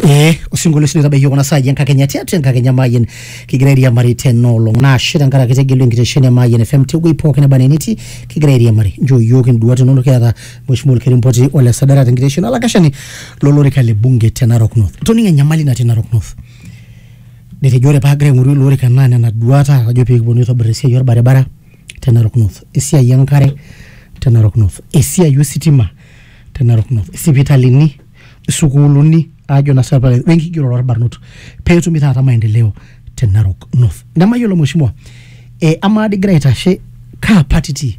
ee osinkolio sii oitabaiki kuna saai enkakenya tiatua enkakenya maayian kigira airiamari tena olong naashe tenkaraki tegelu enkitesheni e maayian fm tewuei pookin neba nenetii kigira airiamari nchoo iyiook induat inonok kiata mheshimiwa olkerimpoti ole sadara tenkitesheni olakashani lolorika le bunge te narok north toning'o enyamali natii narok north Netejo ore paagira aing'oru ilo orika naa nena duat ajo pee kipuonu aitobir esiai orbaribara te Narok North, esiai e nkare te Narok North, esiai ositima te Narok North, isipitalini, isukuuluni ajo naa sinanu piilo ayiolou, we nkigerore orbarnot peetumi taata maendeleo te Narok North. Nemayiolo mheshimiwa ee amaa dii igira aitashe kaa party itii?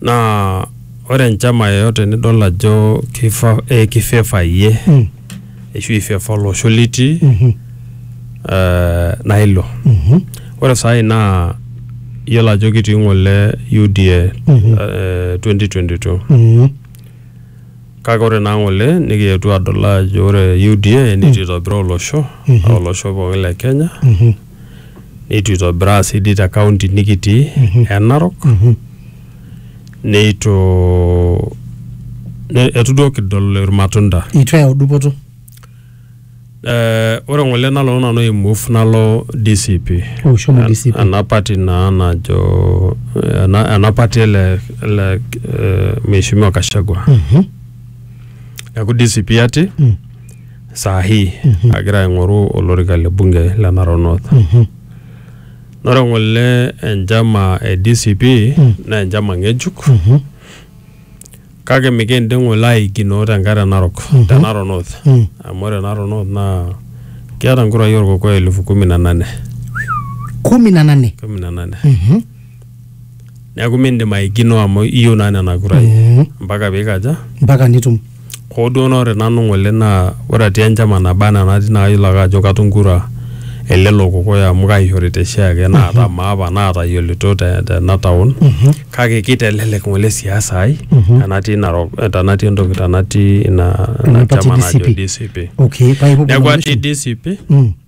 naa ore enchama yoyote nidol ajo kifa, eh, kifeva iyie Mm. ashu ifeva olosho litii Mhm. eh, naa ilo Mhm. ore saai naa iyiolo ajo kitii ng'ole UDA Mhm. eh, 2022 Mhm. kake ore naa ng'ole nikietuo adol ajo ore UDA nitu itobiraa olosho Mhm. olosho pookin le Kenya Mhm. neitu itobiraa sii dii te kaunti nikitii e Narok neitu ne- eitu duo kidol irmatunda itu eyau dupoto Eh, ore ng'ole nalo nanu aimove nalo DCP Oh, shomo DCP. ena party naa najo ena, ena party ele, ele eh, mheshimiwa Kashagwa neeku DCP ati saa hii agira aing'oru olorika le bunge le Narok North. Naa ore ng'ole enchama e DCP naa enchama ng'ejuk kake mikindim ng'ole aaikinoo tenkae te Narok te Narok North amu ore Narok North naa keeta nkurai olkokoyo elfu kumi na nane kumi na nane kumi na nane. neeku mindim aikino amu iyieu naa nena kurai Mhm. mpaka piikaja mpaka nitum hoo duo naa ore nanu ng'ole naa ore atii enchama naba anaa natii naa kayiolo ake ajo katum kura elelo kokoyo amu kaishorita oshiake naata maapa naatayiolito te- tena taon kake kitelelek ng'ole siasa ai tenatii narok tenatii entoki tenatii ina ina Ina party chama najo DCP. DCP okay paa ipuopuo neeku atii nomination? DCP Mm.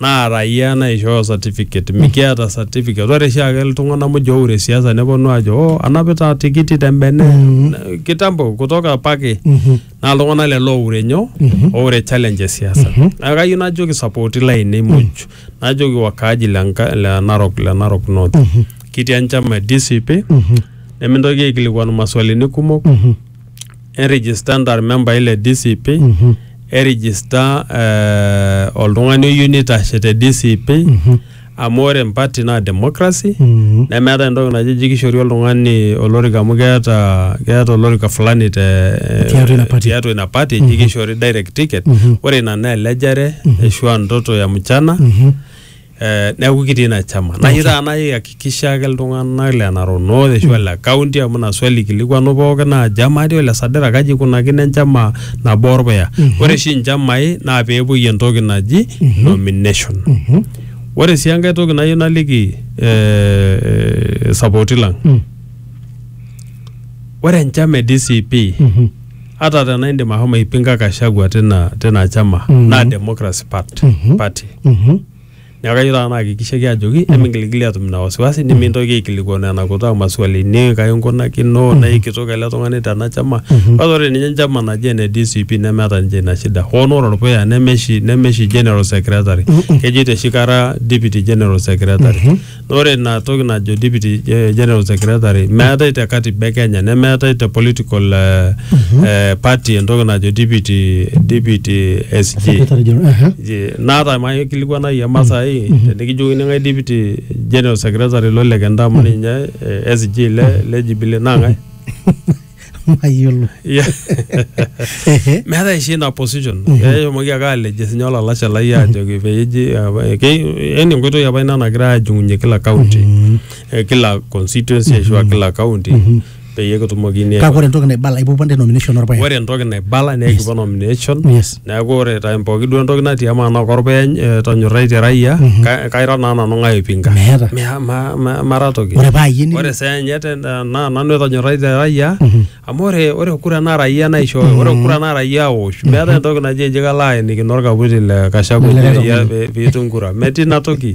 naa raia naishooyo certificate mikiata certificate ore oshiake iltung'anak muj oure siasa neponu ajo oh anapita tikiti tembene Na- kitambo kutoka pake naa iltung'anak lelo oure nyoo oure challenge e siasa naa kayieu najoki support lainei muj najoki wakaaji le Nka- le narok le narok north kitii enchama e dcp nemintoki aikilikuanu maswalini kumok enregister ntar membai le DCP enregister eh, oltung'ani oyieu nitashe te DCP amu ore empati naa democracy Mhm. nemeeta entoki naji ji kishori oltung'ani olorika amu keeta keeta olorika fulani te Tiatua ina party. tiatua ina party ji kishori direct ticket ore ina naa elejare ashu a ndoto ya mchana eh, neeku kitii ina chama nayieu taata naihakikisha ake iltung'anak le Narok North ashu le county amu ina swali ikilikuanu pooki naa chama atii ole Sadera kaji ikunakino enchama nabo orpuya ore oshi inchamai naa peepuoi entoki naji nomination ore sii enkae toki nayieu naliki eh, sapoti lang ore enchama e DCP ata tena indim ahomo aipinga Gachagua tina tina chama Mhm. naa Democracy Part- Mhm. Party Mhm. neeku kayieu taata naakikishaki ajoki emingilgili atum ina wasiwasi nimintoki aikilikuanu ena kutaa maswalini kai inkunakino naa ikitok ele tung'ani tena chama Mhm. kwanza ore ninye enchama naji ene DCP nemeeta ninche ina shida hoo naa ore orpuya nemeshi nemeshi general secretary Mhm. kejoito oshi kara deputy general secretary Mhm. ore ina toki najo deputy eh, general secretary meetae te katiba e kenya nemeetae te political eh, eh, party entoki najo deputy deputy sg Secretary General, aha. Je, naata maye kilikuana iyie masai tenikijokini ng'ae deputy general secretary lo lekenda amu ninye eh, sg le le jubilee naa ng'ae mayiolo Yeah. Ehe. meetae oshi ina position eshomoki ake aleje sinye olalashe lai ajoki peji yani enkoitoi apa ina nagira ajung'unye kila county eh, kila constituency ashu a kila county peyie kitumokini kake ore entoki naibala ipupa nte nomination orpaek ore entoki naibala naa ekipuo nomination yes neeku ore time pooki duo entoki natii amaa naa korpeny eh, tonyorraitie raia ka- kaira naa nanu ng'ae oipinga Meeta. Mea- ma- ma- mara toki Ore paa iyie ni- ore saa enye te- na- naa nanu etonyorraitie raia amu ore ore kura naa raia naishooyo ore kura naa raia awosh meeta entoki naji eji kalo aenikino orkaputi le kashaku Likae peyie- tung'ani. pe- piitum kura metii ina toki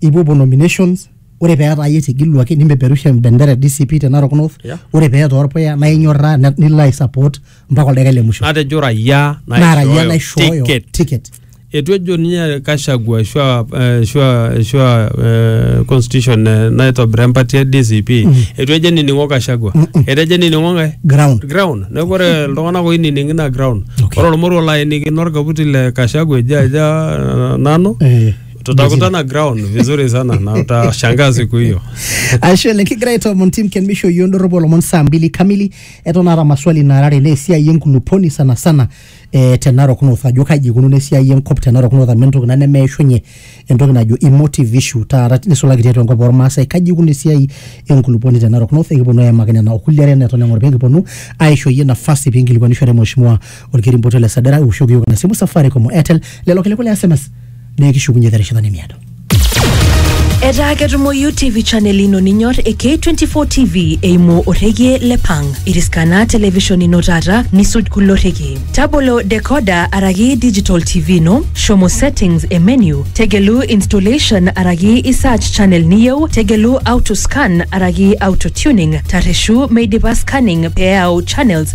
ipuopuo nominations ore peetaa iyie etegeluaki nimpeperusha embendera e DCP te Narok North Yeah. ore peetaa orpuya naa inyorraa ne- nilo ai support mpaka oldaika le musho natejo raia naa raia naishooyo ticket ticket etu ejo ninye Kashagwa ashu a- eh, ashu a- ashu a, eh, constitution eh, naitobira empati e DCP etu ejo enining'o Kashagwa etejo enining'o ng'ae ground ground neeku ore iltung'anak oinining ina ground Okay. ore olmoruo laaenikino orkaputi le Kashagwa ejo aja eh, nanu Eh. tutakutana ground vizuri sana na utashangaa siku hiyo ashe oleng kigira aitoomon tim ken misho yioo ndorropu olomon saa mbili kamili eton aata maswali naarare naa esiai enkuluponi sana sana eh, te narok north ajo kaji ikununo esiai enkop te narok north amu entoki ina nemeishunye entoki najo emotive issue taata nisulaki tiatua enkop ormaasai kaji ikununo esiai enkuluponi te narok north ekiponu aimaki nena okulie are neton eng'or pee kiponu aisho iyie nafasi pee inkilikuanishore mheshimiwa olkirimboto le sadara iwoshoki yiok ina simu safaricom o airtel lelo kiliku le sms naa ekishukunye terishata nimiado Etaa ketumoyu TV channel ino ninyor e K24 TV eimu orrekie le Pang. Iriskana television ino taata nisuj kulo rrekie. Tabolo decoder araki digital TV ino, shomo settings e menu, tegelu installation araki i search channel niyieu, tegelu auto scan araki auto tuning, tarreshu meidipa scanning pee eyau channels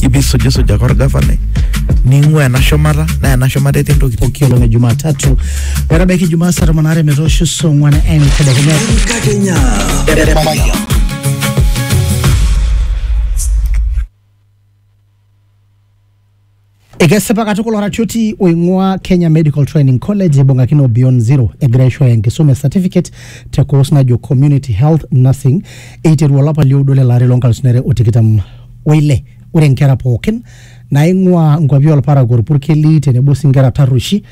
ibisujisujaka orgavanai ning'ua ena shumata naa ena shumata etii ntokitin pooki olong e Jumatatu metabaiki Jumaa saa tomon aare metoosho saa ong'wan entedekenya. Enkakenya. Ekesipa katukul oratioti oing'ua Kenya Medical Training College ibung'akino o Beyond Zero egira aishooyo enkisuma e certificate te course najo Community Health Nursing eiteru olapa lioudo lele ari loo nkalusuni are o tikitam o ile ore nkera pookin naing'uaa nkuapi olparakuo olpurkeli tenebo sii nkera tarrueshi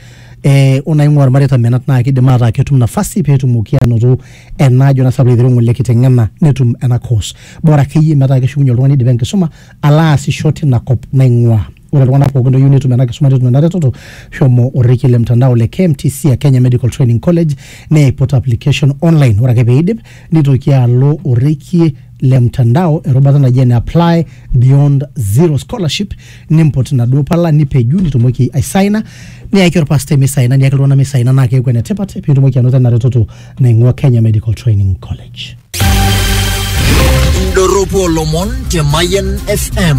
eh, o naing'uaa ilmareita menat naa kidim ataa ketum nafasi peetumoki anoto ena ajo naa sabu aiteru ng'ole kiteng'ena netum ena course bora akeyie metaa keshukunye oltung'ani idipa enkisuma alo aasisho tina kop naing'uaa Ore iltung'anak pookin looyieu netum ena kisuma netum ena retoto, shomo orrekie le mtandao le KMTC a Kenya Medical Training College neiput application online. Ore ake peidip nitoki alo orrekie le mtandao erubata naji ene apply beyond zero scholarship nimput inaduo pala nipeju nitumoki aisaina niyaki orpastai misaina niyaki iltung'anak misaina naa keeku enetipat piitumoki anoto ena retoto naing'ua Kenya Medical Training College. Indorropu olomon te Mayian FM.